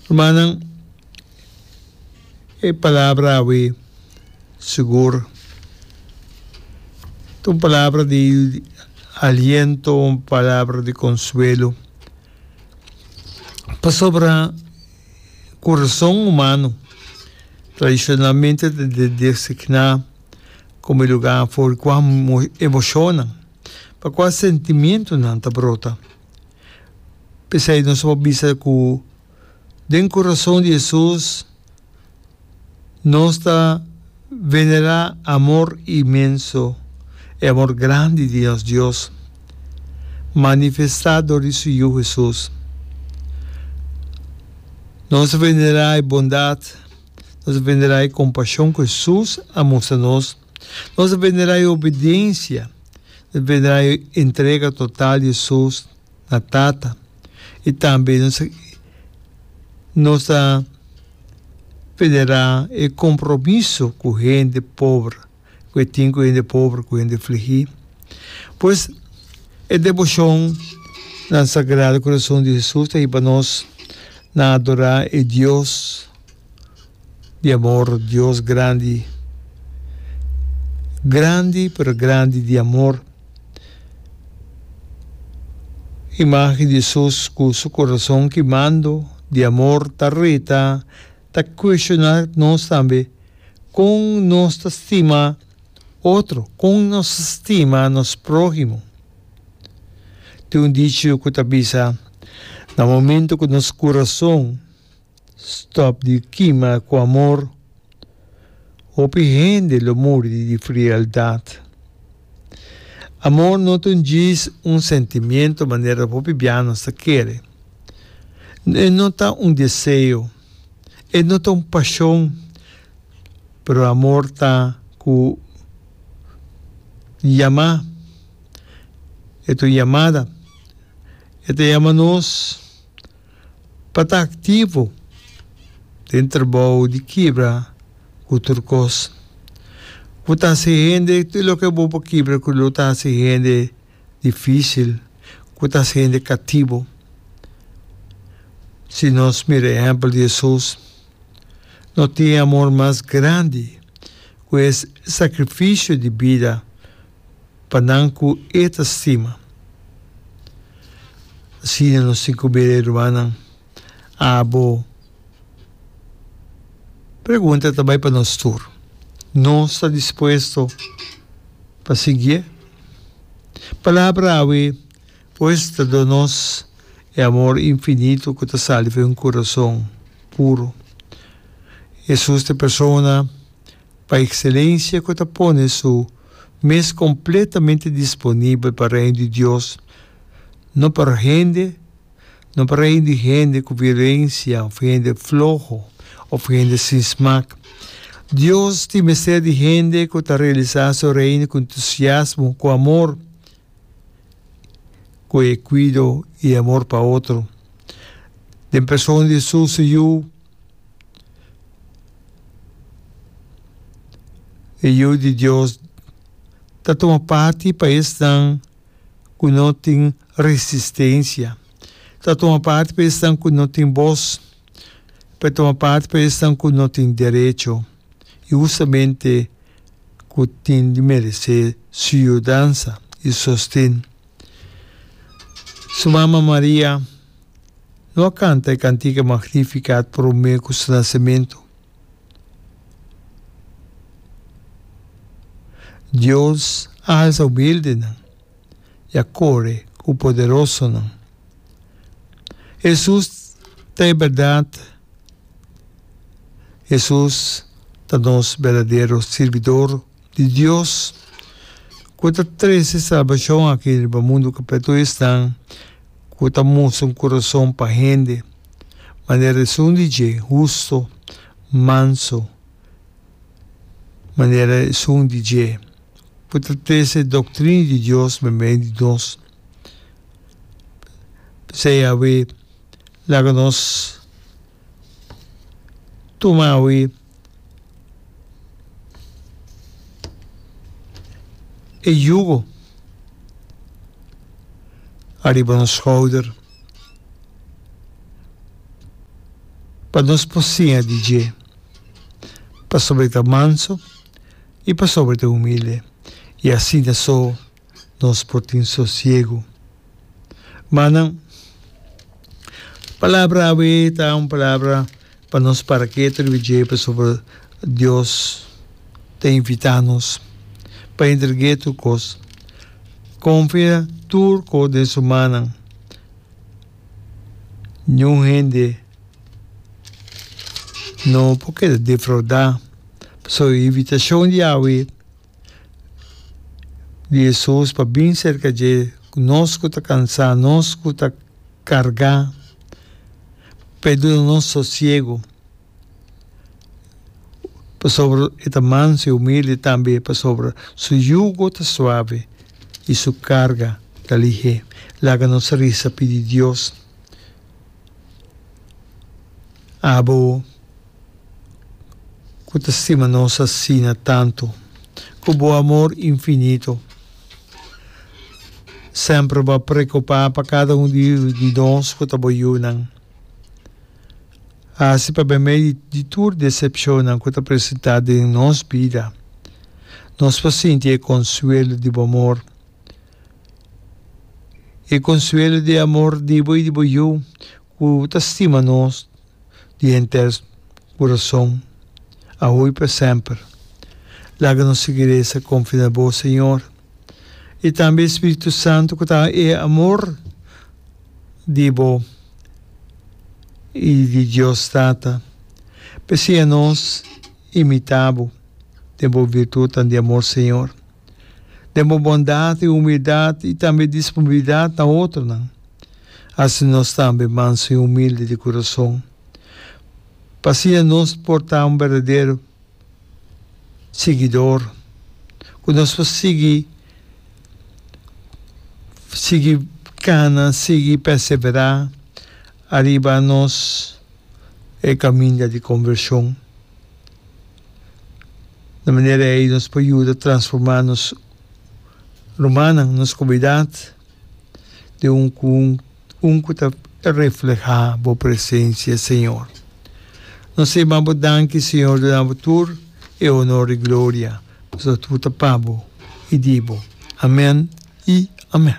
Rumannan, e palabra awe sigur ta un palabra di aliento, un palabra di konsuelo. Pasobra kurason humano tradishonalmente ta designá komo e lugá afó di kua emoshonnan, pa kua sentimientonan ta brota. P'esei nos por bisa ku den kurason di Hesus nos ta venerá amor inmenso, e amor grandi di nos Dios manifestá dor di su Yu Hesus. Nos ta venerá e bondat, nos ta venerá e kompashon ku Hesus a mustra nos. Nos ta penderá e obediensia, nos ta penderá e entrega total di esos na Tata i tambe nos ta nos ta penderá e kompromiso ku hende pober ku e tin ku hende pober ku hende fligí. Pues e deboshon na Sagrado Korason di Hesus ta hini pa nos na adorá e Dios. Di amor Dios grandi Grandi pero grandi di amor Imagen di Jesus cu su corazon kimando di amor ta reta ta cuestiona nos tambe con nos ta stima otro con nos ta stima nos prohimo tin un dicho cu ta bisa na momento cu nos corazon Stop di kima ku amor. Hopi hende lo muri di di frieldat. Amor no ta un djis, un sentimiento manera hopi bia nos ta kere. E no ta un deseo, e no ta un pashon, pero amor ta ku yama, e ta un yamada. E ta yama nos pa ta aktivo den trabou di kibra ku tur kos. Ku ta hasi hende tur loke bo por kibra ku lo ta hasi hende difísil, ku ta hasi hende kativo. Si nos mira ehèmpel di Hesus, no tin e amor mas grandi ku e sakrifisio di bida pa nan ku E ta stima. Asina nos tin ku bira e rumannan. Abo pregunta ta bai pa nos tur. Nos ta dispuesto pa siguié? Palabra awe pues ta dor nos e amor infinito ku ta sali fu e un kurason puro. Hesus ta e Persona. pa Excelencia cu ta pone su mes completamente disponibel pa Reino di Dios, no pa hende, no pa reino di hende cu violencia of hende floho of hende sin smaak. Dios tin mester di hende cu ta realisa su Reino cu entusiasmo, cu amor, cu e cuido y amor pa otro. Den persona di su su Yu. E Yu di Dios ta tuma parti pa esnan ku no tin resistensia. Ta tuma parti pa esnan ku no tin bos. Ta tuma parti pa esnan ku no tin derecho i hustamente ku tin di meresé su yudansa i sosten. Su mama Maria. Lo a canta e cantica Magnificat prome cu su nacemento. Dios a alsa humildenan y a core cu poderosonan. Jesús ta e berdad. Jesús ta nos berdadero sirbidor. di Dios ku ta trese salbashon aki riba mundu kapletu esnan ku ta mustra un kurason pa hende, manera e sun di dje, husto, manso, manera e sun di dje, ku ta trese e doktrini di Dios den medio di nos. P'esei, Yahwe laga nos. tuma awi e yugo ariba nos schouder pa nos por siña di dje pasobra e ta manso y pasobra e ta humilde y asina so. nos por tin sosiego. Manan, palabra awe ta un palabra pa nos para ke ta riba dje pasobra Dios ta invitá nos pa entreg'é tur kos, konfia tur kos den su mannan. Niun hende no por keda defraudá pasobra e invitashon di Yahwe. di Hesus pa bin serka dje ku nos ku ta kansá, nos ku ta kargá, pa e duna nos sosiegu, pasobra e ta mansu i humildi, tambe pasobra su yugo ta suave i su karga ta ligé. Laga nos resa pidi Dios, Abo. ku ta stima nos asina tantu, ku bo amor infinito semper bo a preokupá pa kada un di nos ku ta bo yunan. Hasi pa ben mei di tur desepshonnan ku ta presentá den nos bida, nos por sinti e konsuelo di bo amor, e konsuelo di e amor di bo i di bo Yu. Ku ta stima nos di henter kurason, awo i pa semper. Laga nos sigui resa konfia na Bo, Señor, i tambe e Spiritu Santu ku ta e amor di Bo i di Dios Tata. P'esei anos imitá Bo den Bo virtutnan di amor, Señor, den Bo bondat i humildat i tambe disponibilidat na otronan. Asina nos tambe manso i humilde di kurason, pa siña nos por ta un berdadero siguidor, ku nos por sigui sigui kana, sigui perseverá ariba nos e kaminda di kombershon. Na manera ei nos por yuda transformá nos rumannan, nos komunidat. de un ku un ku ta reflehá Bo presensia, Señor. Nos ta yama Bo danki, Señor, duna Bo tur e onor i gloria, pasobra tur ta pa Bo i di Bo. Amèn i amèn.